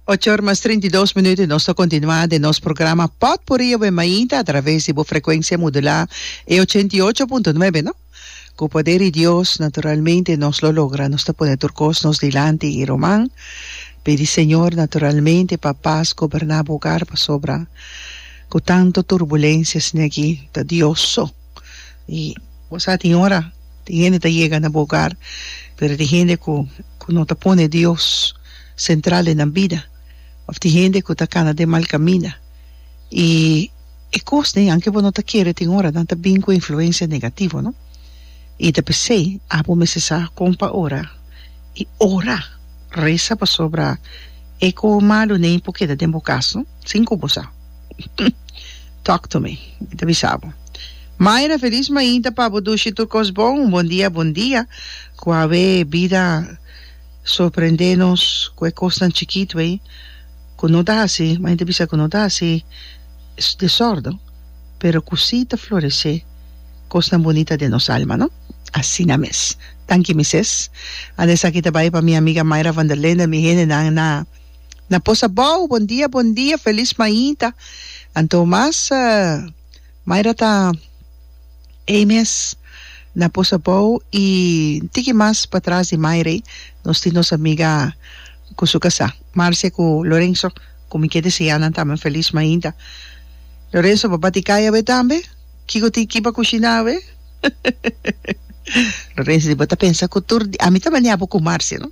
Ocho or mas trinta i dos minuut i nos ta kontinuá den nos programa Potpuri Yobe Mainta atraves di bo frekuensia modulá e ochenta i ocho punto nuebe no. Ku poder di Dios naturalmente nos lo logra, nos ta pone tur kos nos dilanti i ruman pidi Señor naturalmente pa pas goberná bo ogar pasobra ku tantu turbulensiasnan aki ta Dios so. y bo sa tin ora tin hende ta yega na bo hogar pero tin hende cu cu no ta pone Dios central den nan bida of tin hende cu ta cana den mal caminda y e cosnan aunke bo no ta kere tin ora nan ta bin cu influencia negativo no y ta pesey abo mester sa con pa ora y ora reza pasobra e cojo malo ne por keda den bo cas no sin cu bo sa. Talk to me. Mi ta bisa bo. Mayra, Felis mainta pa bo dushi tur kos bon. Un bon dia bon dia. Ku awe bida sorprende nos ku e kosnan chikit wey ku no ta hasi, mainta ta bisa ku no ta hasi desorden, pero ku si ta florese kosnan bunita den nos alma, no? Asina mes. Danki mises. Ande esaki ta bai pa mi amiga Mayra van der Linden, mi hendenan na. Na posa bou bon dia bon dia felis mainta anto mas maira ta ey mes na posa bou y tiki mas pa tras di maira ey nos tin nos amiga cu su casa marcia cu lorenzo cu mi ke desea nan tambe felis mainta lorenzo pa bati cay awe tambe kico tin ki pa cushina awe lorenzo di bo ta pensa cu tur dia ami ta baniabo cu marcia no.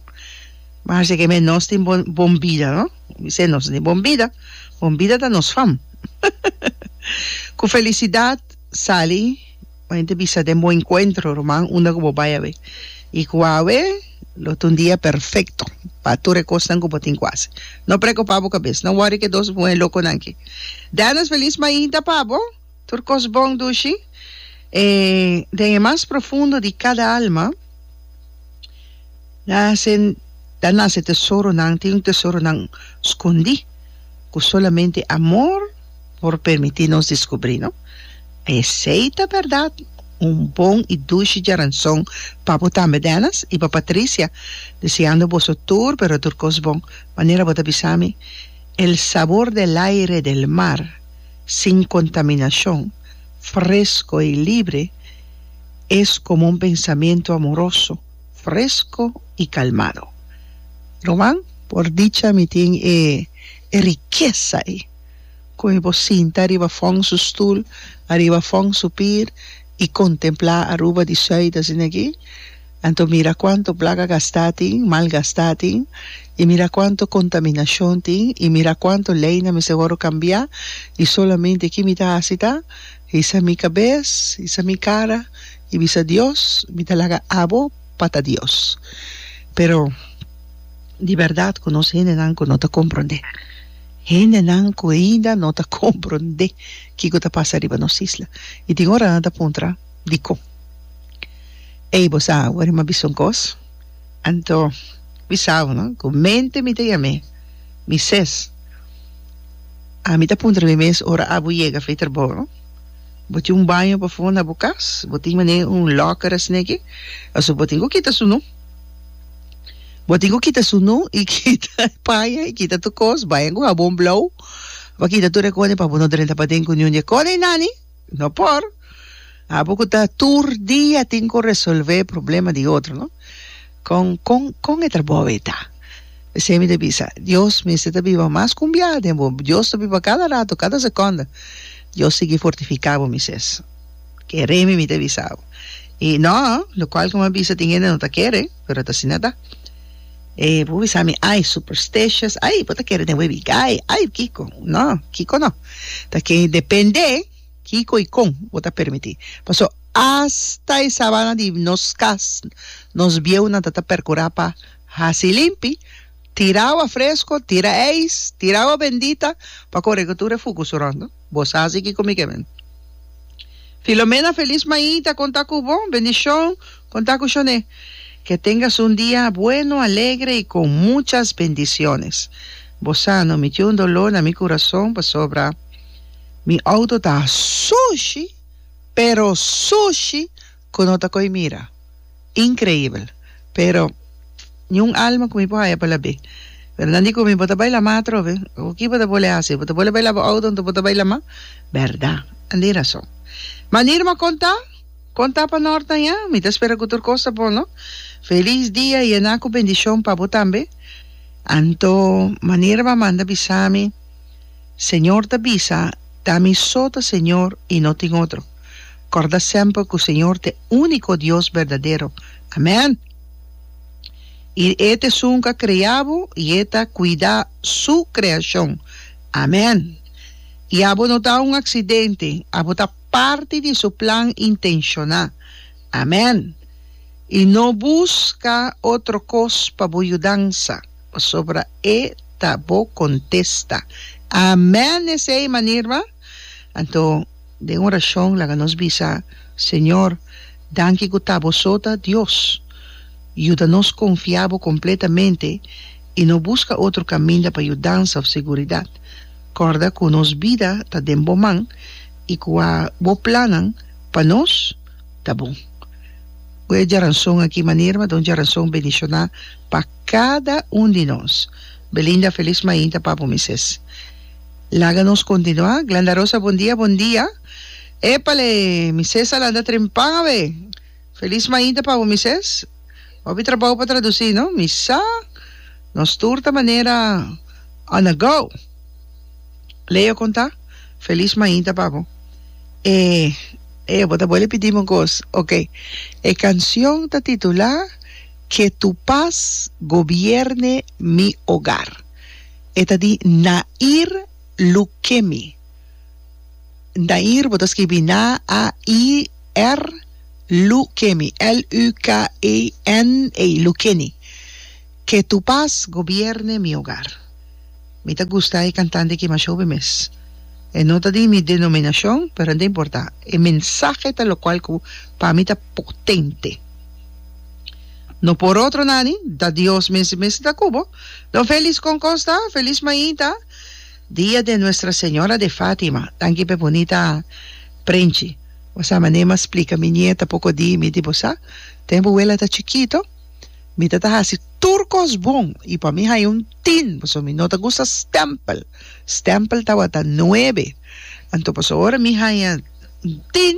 Mas di keme nos tin bon bon bida no mi se nos no tin bon bida bon bida ta nos fam ku felisidat sali bo yente bisa den bo enkuentro ruman unda ku bo bai awe i ku awe lo ta un dia perfekto pa tur e kosnan ku bo tin ku hasi no prekupá bo kabes no wòri ku e dos muhé lokonan ki dènnis felis mainta pa bo. Tur kos bon dushi e den e mas profundo di kada alma nase ta nase tesoronan tin un tesoronan skondí ku solamente amor por permití nos diskubrí no esei ta bèrdat un bon i dushi djaranson pa bo tambe Dennis i pa Patricia deseando boso tur pero tur kos bon manera bo ta bisami el sabor del aire del mar. sin kontaminashon, fresko i libre, es komo un pensamentu amoroso, fresko i kalmado. Ruman? Por dicha mi tin e rikesa ei ku mi por sinta ariba fon su stul, ariba fon su pir i kontemplá Aruba di Sùit asin'akí. Anto mira cuanto blaga gastá tin, malgastá tin, y mira cuanto contaminacion tin, y mira cuanto leynan mester wòrdu cambiá, y solamente ki mi ta haci ta, hisa mi cabes, hisa mi cara, y bisa Dios, mi ta laga abo pa ta Dios. Pero, di berdad cu nos hendenan cu no ta comprendé, hendenan cu ainda no ta comprendé kico ta pasa riba nos isla, y tin ora nan ta puntra, Dikon? Ey bo sa awor mi a bisa un kos? Anto bisabo no ku mente mi ta yam'é mi ses. Ami ta puntra mi mes ora abo yega afey trabou no? Bo tin un baño pafon na bo kas? Bo tin manera un locker asina aki? Pasobra bo tin ku kita su nu. Bo tin ku kita su nu i kita e paña i kita tur kos. Baña ku habon blou pa kita tur e kone pa bo no drenta paden ku niun di e kone i nani. No por. Abo cu ta tur dia tin cu resolve problema di otro, no? Con, con, con e trabou ei ta? P'esei mi ta bisa, Dios mester ta biba mas cumbiá den bo. Dios ta biba cada rato, cada seconda. Dios sigui fortificá bo, Moises. Keré mi, mi ta bisa bo. I no, locual como a bisa tin hende no ta kere. pero ta asina ta e bo bisa mi ay supersticious ay bo ta kere den web y gay ay kiko no kiko no ta ke depende kiko y kon bo ta permiti paso hasta e sabana di nos cas nos bieunan ta ta percura pa haci limpi tira awa fresco tira ais tira awa bendita pa corregutura fucu su rondo. Bo sa si kiko mi ke men. Filomena, Felis maí ta konta ku bo. Bendishon konta ku Shone. Ke tengas un dia bueno, alegre i kon muchas bendishones. Bo sa no miti un doló na mi kurason pasobra mi outo ta sushi, pero sushi Ku no ta koi mira. Inkreibel. Pero niun alma ku mi por haya pa la be. Berdad di ku mi bo ta bai la ma atrobe? Ku ki bo ta bole hasi? Bo ta bole bai la bo outo anto bo ta bai la ma? Berdad. An tin rason. Ma Nirma konta, konta pa nor ta ya. Mi ta spera ku tur kos ta bon no. Felis dia yená ku bendishon pa bo tambe. Anto ma Nirma manda bisa mi, Señor ta bisa ta mi so ta Señor i no tin otro. Corda semper cu Señor t'e unico Dios berdadero. Amen! Y E t'e sun ca crea bo y E ta cuida Su creacion. Amen! Y abo no ta un accidente, abo ta parti di Su plan intenciona. Amen! Y no busca otro cos pa bo yudansa, pasobra E ta bo contesta. Amen! Esey manera, anto. Den orashon laga nos bisa, Señor, danki ku ta Boso ta Dios. Yuda nos konfia Bo kompletamente i no buska otro kaminda pa yudansa òf seguridat. Kòrda ku nos bida ta den Bo man i kua Bo plannan pa nos ta bon. Bo e Djaranson aki manera m'a da un djaranson bendishoná pa kada un di nos. Belinda Feliz Mainta Papo Misés. Laga nos kontinuá. Glenda Rosa Bon dia bon dia Epale mi ses a lanta tren pan awe Felis mainta pa bo mi ses Hopi trabou pa tradusi no mi sa Nos tur ta manera on a go Leo konta Felis mainta pa bo E e bo ta bole pidi mi kos ok E kansion ta titulá Ke tu pas gobierne mi ogar. E ta di Nair Lukemi. Nair bo ta skibi Na a i r Lukemi, L u k e n e Lukeni. Ke tu pas gobierne mi hogar. Mi ta gusta e kantante aki masho be mes. E no ta di mi denominashon pero no ta importa. E mensahe ta lokual ku pa mi ta potente. No por otro nan ni, ta Dios mes i mes ta ku bo. Don Felix con Costa, Feliz Mainta, dia de Nuestra Señora de Fatima, tanki pe bunita prenchi. Bo sa mané ma splica mi nieta poco di mi di bo sa, tem bo wela ta chikito, mi ta ta haci tur cos bon y pa mi hay un tin, pasobra mi no ta gusta stempel, stempel tawata nuebe, anto pasobra ora mi haya un tin,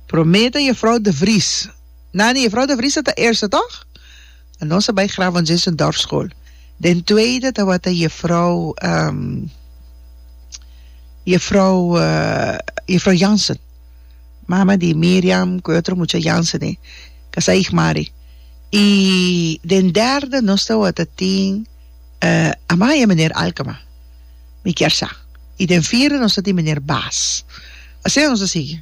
prome ta Jefrouw de Vries, Nani Jefrouw de Vries ta ta eerste toch? a nos a bai graba un Zesendorfschool. Den tweede tabata Jefrouw ehm Jefrouw Jefrouw Jansen, mama di Miriam ku e otro mucha Jansen e, kasá ich Mari. I den derde nos tabata tin Amaya Meneer Alkema, mi kier sa. I den vierde nos ta tin Meneer Baas. Asina nos a sigui.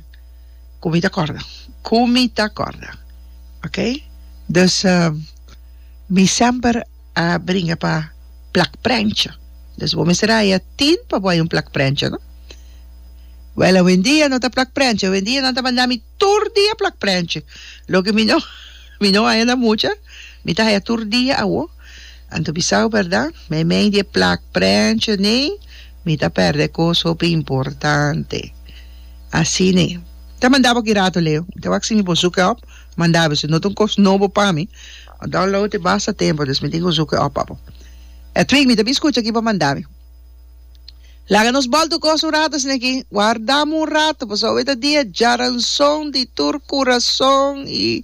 Cu mi ta corda. Cu mi ta corda. Ok? Dus, mi semper a bringa pa plak prencha. Dus bo mester haya tin pa bo haya un plak prencha, no? Wel, awendia no ta plak prencha. Awendia nan ta manda mi tur dia plak prencha. Loke mi no, mi no haya na mucha, mi ta haya tur dia awo. Anto bisau berda, meimei di e plak prensha nei mi ta perde kos hopi importante. Asine. Ta manda bo ki rato Leo. Mi ta wak si mi por zoek e op. Manda bo si no ta un kos nobo pa mi. Bo download e basta tempo dus mi tin ku zoek e op pa bo. Edwin, mi ta bin skucha ki bo manda mi. Laga nos bolto gosa un rato asina aki. Warda mi un rato pasobra e ta dia djaranson di tur kurason i